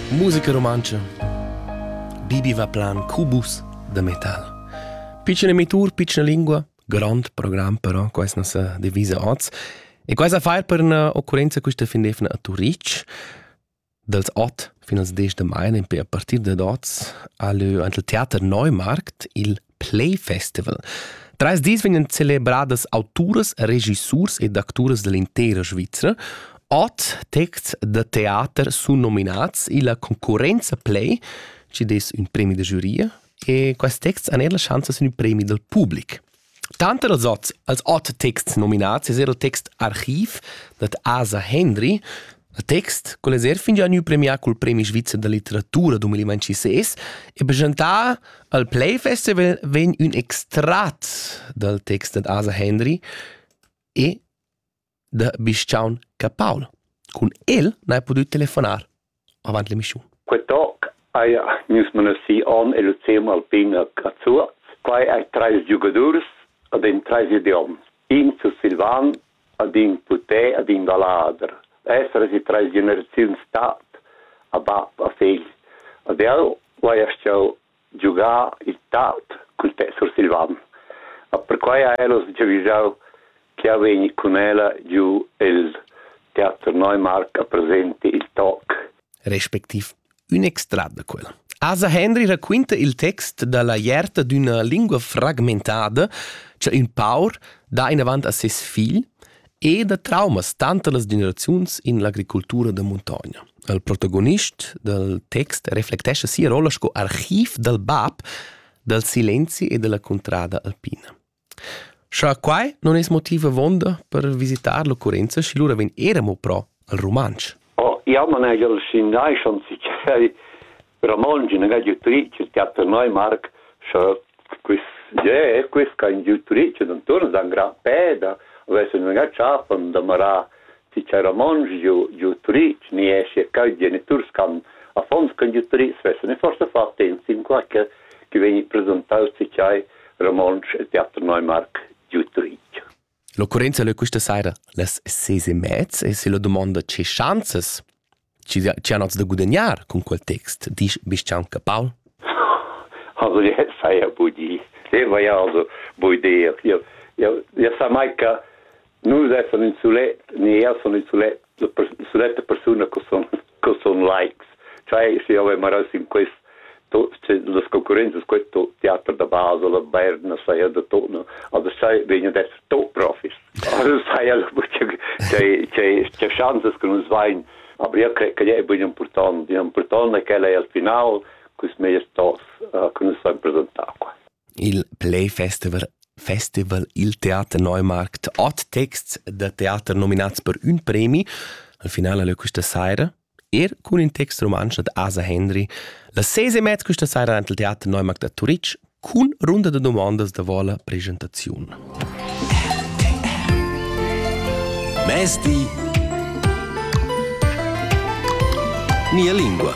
Musica rumantscha Bibi va plan cubus da metal. Piccina mitur, piccina lingua, grond program però, questa non sa divisa oz. E questa fa per una occorrenza questa fin defna a Turic, dals 8 fino als 10 de mai, a partir da oz, al, al Theater Neumarkt il Play Festival. Trais dis vegnan celebradas auturas, regissurs ed acturas dall'intera Svizra. Ot texts da teater sun nominats illa concurrenza Play, ci des ün premi da giuria, e questi texts han er la chance sin il premi dal public. Tanter als ots, als ot texts nominats es er il text Archiv dad Asa Hendry, Il text quel es eir fingià gnü premià cul premi svizzer da litteratura 2026 e presentà al Play Festival vegn ün extrat dal text dad Asa Henry e da Bischaun Capaul. Cun el n'hai pudü telefonar avant l'emischiun. Quei toc hai nus menosì on e Lucium Alpina Cazzuaz. Quai hai trais giugadurs ad in trais idioms. In sursilvan, ad in putè, ad in vallader, esser si trais generaziuns tat, a bab, a figl. Ad el ho eir stiu giugà il tat cul tet sursilvan. A perquai ha el uss giavüschau ch'eu vegni cun ella giu el Teater Neumarkt a presenter il toc. respectiv Ün extrat da quel. Asa Henry raquinta il text dalla ierta d'üna lingua fragmentada cha ün paur dà inavant a ses figl e da traumas tanter las generaziuns in l'agricultura da muntogna. Il protagonist dal text reflectescha sia rolla sco archiv dal bab dal silenzi e dalla cuntrada alpina. Scha quai non es motiv avonda per visitar l'occurrenza, schi lura vegn era mo pro al rumantsch. Oh, jau non hai el sin nai schon sichei Ramon gin ga giutric il teater noi Marc scha quist je quist ca in giutric d'anturn dan gran peda avess un ga chafan da marar si cha Ramonsch giò giò Turitg niescia ch'eir geniturs ch'han affons ch'han giü Turitg svessan e forsa fa attent in quai che chi vegni presentau si chai Ramonsch e Teater Neumark giu Turitg. L'occurrenza leu questa saira las ses e mez e se la dumonda che schanzas chi chi han hoz da gudagnar cun quel text, disch Bischanca Paul? Also jetzt sei er Budi. Den war ja also Budi. Ja, ja, ja sa mai che nus essan in sulet, ne io sono in sulet, sulet persone che sono, che sono likes. Cioè, se io aveva in questo las concurrenzas questo teater da basa la Berna saja da tona also sai vegna da to profis also saja la c'è c'è c'è chances che nus vain aber io credo che è ben importante importante che è al final cus meier tos che nus san presentare qua il play festival Festival Il Teater Neumarkt hat Texts der Theater nominats per un premi. Al final è questa sera Er cun in text rumantsch dad Asa Hendry la ses e mez questa saira en il Teater Neumarkt da Turitg cun runda da dumondas da vola presentaziun. Mezdi. Mia lingua.